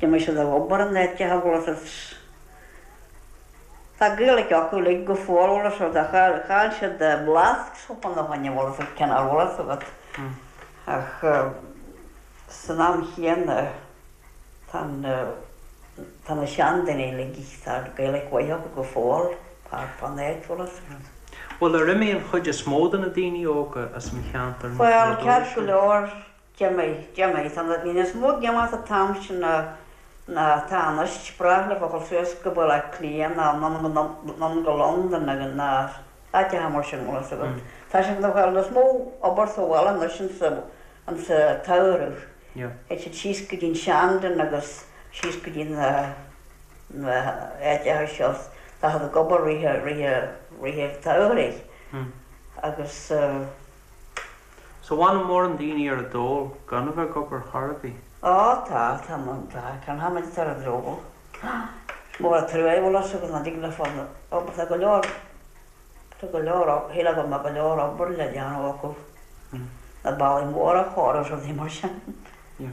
D'imigh siad ag obair in áiteacha bhfuil a fhios agat is tá Gaeilic acu uilig go fóill. Bhfuil a fhios agat, chaill siad blas sopa na bhainne bhfuil a fhios cén fhath bhfuil a fhios agat. Ach san am chéanna tá na, tá na seandaoine uilig, tá Gaeilic mhaith acu go fóill thart fán áit bhfuil a fhios agat. Bhuel ar imigh an chuid is mó de na daoine óga as an cheantar nuair a dúisigh? Bhuel ceart go leor D'imigh, d'imigh, tá níos mó ag imeacht an t-am sin ná tá anois, b'fhearr leofa gabháil suas go Baile Átha Cliath ná anonn go Londain nó go na háiteacha mar sin bhfuil a fhios agat. Tá siad ag fáil níos mó obair sa bhaile anois insa tsamhradh. Théid siad síos go dtí an Shandon agus síos go dtí na na áiteacha seo. Tá siad ag obair rith rith rith an tsamhraidh agus eh. So bhfuil mórán daoine ar an dól gan a bheith ag obair chor ar bith. Ó tá, tá mórán tá. Canfaimid Tar a Drogall. Mór a' trua é bhfuil 'fhios agat nach dtig leo fáil obair, tá go leor, tá go leor shílfeá go mbeadh go leor obair le déanamh acu, na bealaí móra a chóiriú is rudaí mar sin. Yeah.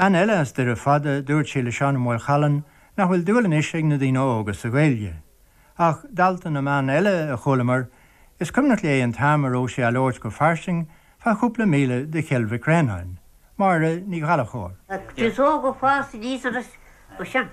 Bean eile as Doire Fada, dúirt sí le Seán Ó Maolchallann nach bhfuil dúil anois ag na daoine óga sa Ghaeilge. Ach, dalta na mban eile a chualamar, is cuimhneach léi an t-am a raibh sé á labhairt go fairsing fá chúpla míle de Chill Mhic Réanáin. Máire Ní Ghallachóir. Agus óga fásta níos anois, b'shin.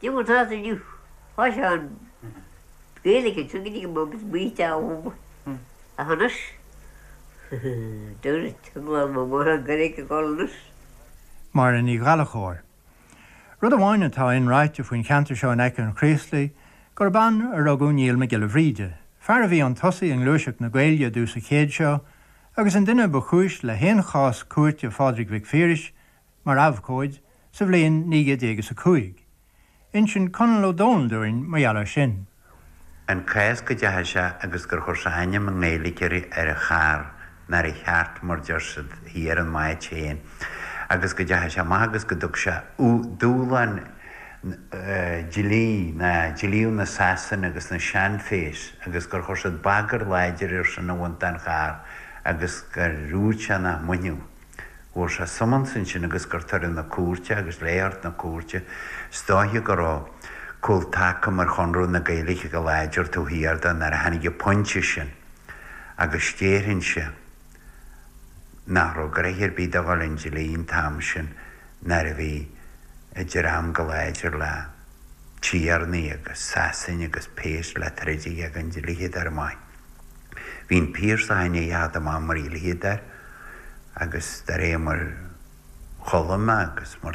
Diúltás inniu. Tá sé an Gaeilge anseo go dtí go mbeidh muid baoite abhus. Ach anois? Dúirt lán mo mháthar gur ag gol anois. Máire Ní Ghallachóir. Rud amháin atá inráite faoin cheantar seo in aice an Chraoslaigh, gurb ann a rugadh Niall Mac Giolla Bhríde, fear a bhí un tosaigh i ngluaiseacht na Gaeilge i dtús an chéid seo, agus an duine ba chúis le haon chás cúirte Phádraig Mhic Phiarais mar abhcóid sa bhliain naoi gcéad déag is a cúig. Insíonn Conall Ó Domhnaill dúinn mar gheall air sin. An cás go dteachaigh sé agus gur chuir sé ainm i nGaeilge ar a charr nó ar a chairt mar deir siad thíos ar an áit féin agus go dteachaigh sé amach agus go dtug sé dúshlán dlí na dlíodh na Sasana agus na seanphéas agus gur chuir siad bagairt láidir air sin a bhaint den charr agus gur dhúirt sé nach mbainfeadh. bhfuair sé summons ansin agus gur tugadh na cúirte agus le é a thabhairt na cúirte is dóiche go raibh cúl taca mar Chonradh na Gaeilge go láidir taobh thiar de nuair a tháinig an pointe sin agus déarfainnse nach raibh gnoithe ar bith dó a dhul un dlí an t-am sin nuair a bhí an dream chomh láidir le tiarnaí agus Sasain agus péas le troid aige an dlighead ar a mbaill. Bhí an Piarsach ina cheart mar leader agus do réir mar chuala mé agus mar.